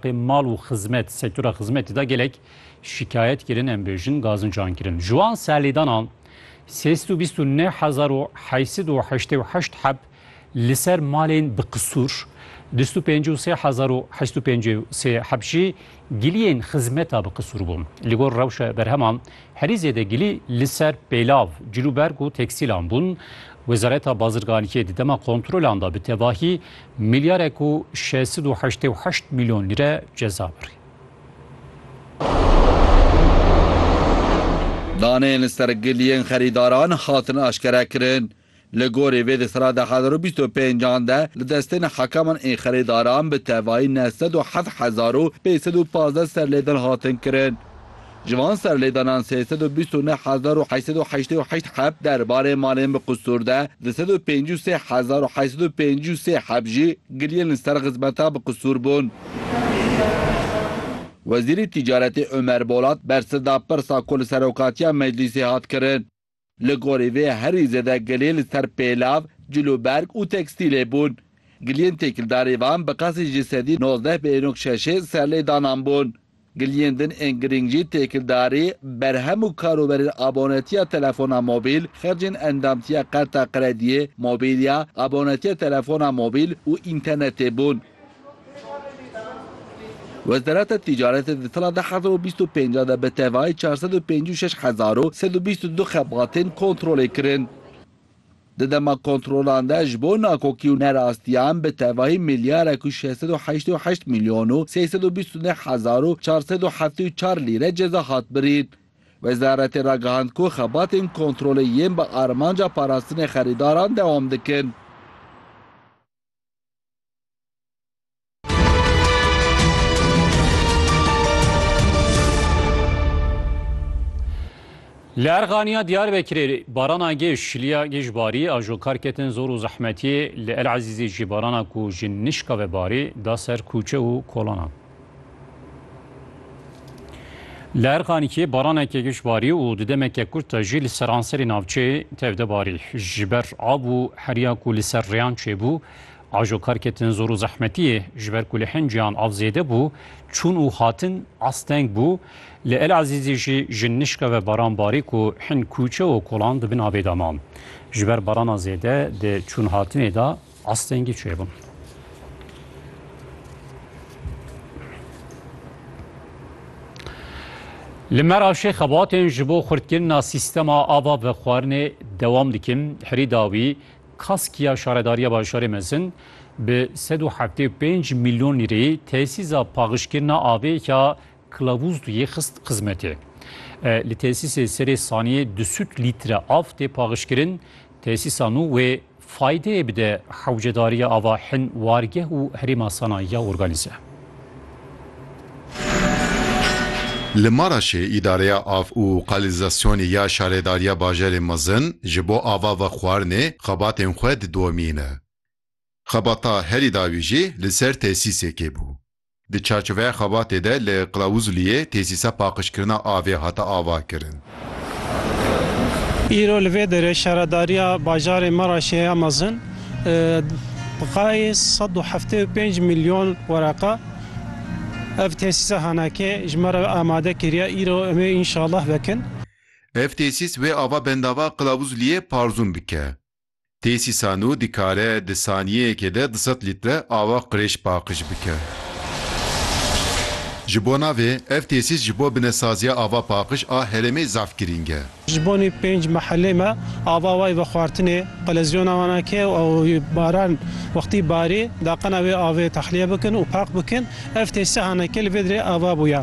Pê mal û xizmet, sektora xizmetê de gelek şîkayet kirin, em bêjin gazincan kirin. Ji wan serlêdana sê sed û bîst û neh hezar û heşt sed û heştê û heşt heb li ser malên bi qisûr, du sed û pêncî û sê hezar û heşt sed û pêncî û sê heb jî giliyên xizmeta bi qisûr bûn. Li gor rewşa berheman herî zêde gilî li ser pêlav, cilûberg û teksîlan bûn. Wezareta Bazirganiyê di dema kontrolan de bi tevahî Milyarek û şeş sed û heştê û heşt milyon lîre ceza birî. Daneyên li ser giliyên xerîdaran hatin aşkerekirin. Li gorî vê di sera du hezar û bîst û pênc an de li destên hekaman ên xerîdaran bi tevayî neh sed û heft hezar û pênc sed û pazdeh serlêdan hatin kirin. Ji van serlêdanan sê sed û bîst û neh hezar û heşt sed û heştê û heşt heb der barê malên bi qusûr de, di sed û pêncî û sê hezar û heşt sed û pêncî û sê heb jî giriyên li ser xizmeta bi qusûr bûn. Wezîrê Tîcaretê Omer Bolat bersiv da pirsa ku li Serokatiya Meclîsê hat kirin. Li gorî vê herî zêde gilê li ser pêlav, cilûberg û tekstîlê bûn. Giliyên têkildarî van bi qasî ji sedî nozdeh bêrok şeşê serlêdanan bûn. Giliyên din ên girîng jî têkildarî, berhem û karoberên abonetiya telefona mobîl, xercên endamtiya qerta qrediyê, mobîlya, abonetiya telefona mobîl û înternetê bûn. Wezareta Tîcaretê di sala du hezar û bîst û pênc de bi tevayî çar sed û pêncî û şeş hezar û sed û bîst û du xebatên kontrolê kirin. Di dema kontrolan de ji bo nakokî û nerastiyan bi tevahî milyarek û şeş sed û heştê û heşt milyon û sê sed û bîst û neh hezar û çar sed û heftê û çar lîre ceza hat birîn. Wezaretê ragihand ku xebatên kontrolê yên bi armanca parastinê xerîdaran dewam dikin. Li Erxaniya Diyarbekirê barana gê şiliya gê ji barî a jo kar ketin zor û zehmetiyê li El Ezîzê jî barana ku ji nişka ve barî da ser kûçe û kolanan. Li Erxanîkê baraneke giş barî û di demeke kurt de jî li seranserê navçeyê tevde barî. Ji ber av û heriya ku li ser rêyan çêbû, ajokar ketin zor û zehmetiyê. Ji ber ku li hin cêyan av zêde bû, çûn û hatin asteng bû. Li El Ezîzê jî ji nişka ve baran barî ku hin kûçe û kolan di bin avê de ma. Ji ber barana zêde di çûnhatinê de, Astengî çêbûn. Li Meravşê xebatên ji bo xurtkirina sîstema ava bi xwarinê dewam dikin. Herî dawî kaskiya şaredariya bajarê mezin bi sed û heftê û pênc milyon lîreyê tesîza paxijkirina avê ya Kilavûz dû yê xist xizmetê. Li tesîsê serê saniyê du sûd lître av tê paxişkirin. Tesîsa nû wê faydeyê bide hewcedariya ava hin wargeh û herêma Sanayî ya organîze. Li Maraşê Îdareya Av û Qalînzasyonê ya Şaredariya Bajarê Mezin ji bo ava ve xwarinê xebatên xwe didomîne. Xebata herî dawî jî li ser tesîsekê bû. Di çarçoveya xebatê de li Qilawuzliyê tesîsa paqijkirina avê hate avakirin. Îro li vê derê şaredariya bajarê Meraşê ya mezin bixayê sed û heftê û pênc milyon wereqe. Ev tesîsa henekê ji me re amade kiriye, îro em ê înşallah vekin. Ev tesîs wê ava bendava Qilawuzliyê parzûn bike. Têsîsano dikare di saniyeyekê de du sed lître awa qirêj paqij bike. Ji bo navê, ev têsîs ji bo binesaziya ava paqij a herêmê zaf girîng e. Ji bonê pênc mehelê me ava wayî vexwartinê qelezyona wan e ke ew baran wextî barî daqena wê avê texliye bikin û paq bikin. Ev têsîsa haneke li vê dirê ava bûye.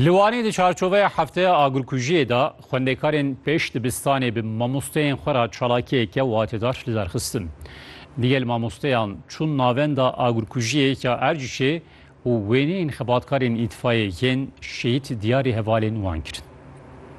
Li Wanê di çarçoveya hefteya agirkujiyê de xwendekarên pêş dibistanê bi mamosteyên xwe re çalakiyeke watedar li dar xistin. Digel mamosteyan çûn navenda agirkujiyê ya Ercişê û wêneyên xebatkarên îtfayeyê yên şehîd diyarî hevalên wan kirin.